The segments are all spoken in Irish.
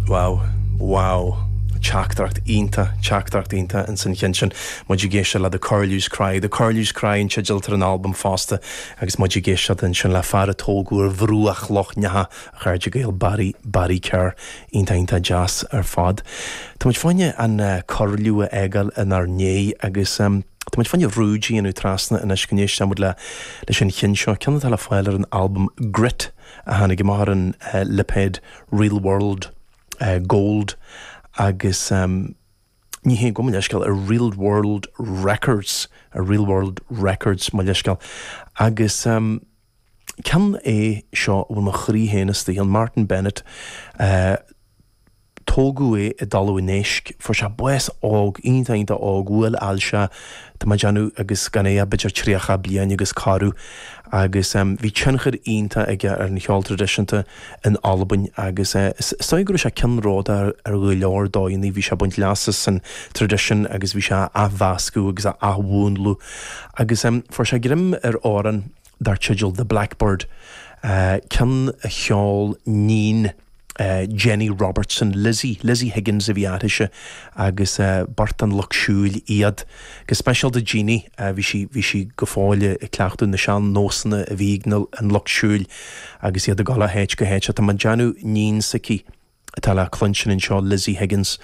Wow, wow. Teachtaireacht iontach, teachtaireacht iontach insan cheann sin. Muid ag éisteacht le The Curlew's Cry. The Curlew's Cry an teideal atá ar an albam fosta agus muid ag éisteacht ansin le fear a tógadh ar bhruach Loch Neacha, a chairde Gael Barry, Barry Kerr. Iontach deas ar fad. Tá muid fá choinne an corrliún a fhágáil inár ndiaidh agus tá muid fá choinne rúid a dhéanamh trasna anois go n-éistfidh muid le leis an chinn seo, ceann atá le fáil ar an albam Grit a tháinig amach ar an lipéad Real World Gold agus ní hea go, mo leithscéal, ar Real World Records, ar Real World Records, mo leithscéal. Agus. ceann é seo a bhfuil mo chroí féin istigh ann, Martyn Bennett. Tógadh é i dTalamh an Éisc. Fuair sé bás óg, iontach, iontach óg, bhuail ailse é, tá mé ag déanamh, agus gan é ach b'fhéidir tríocha bliain agus corradh. Agus bhí tionchar iontach aige ar an cheol traidisiúnta in Albain agus is dóigh go raibh sé ceannródaíoch ar go leor dóigheanna, bhí sé ag baint leas as an traidisiún agus bhí sé á athmheascadh agus á athmhúnlú. Agus fuair sé greim ar amhrán. dar teideal The Blackbird, ceann a cheol níon Jeannie Robertson, Lizzie, Lizzie Higgins, a bhí uirthise agus beirt den lucht siúil iad. Go speisialta Jeannie, bhí sí, bhí sí go fóill ag cleachtadh na sean-nósanna a bhí ag an lucht siúil agus iad ag dul ó háit go háit. Tá mé ag déanamh níon s'aici atá le cluinstin anseo Lizzie Higgins.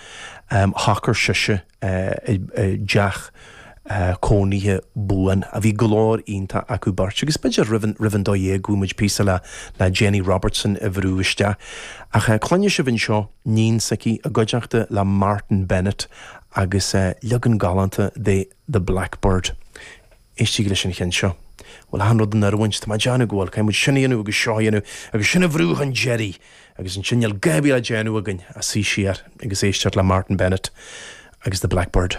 Shocair sise i dteach cónaithe buan. Bhí glór iontach acu beirt. Agus b'fhéidir roimh an dó dhéag go bhfaighidh muid píosa le Jeannie Robertson a bhrú isteach. Ach cluinfidh sibh anseo níon s'aici i gcuideachta le Martyn Bennett agus leagan galánta de The Blackbird. Éistígí leis an cheann seo. Bhfuil achan rud in oiriúint? Tá mé ag déanamh go bhfuil. Caithfidh muid sin a dhéanamh agus seo a dhéanamh agus sin a bhrú chun deiridh. Agus ansin níl a dhath le déanamh againn ach suí siar agus éisteacht le Martyn Bennett agus The Blackbird.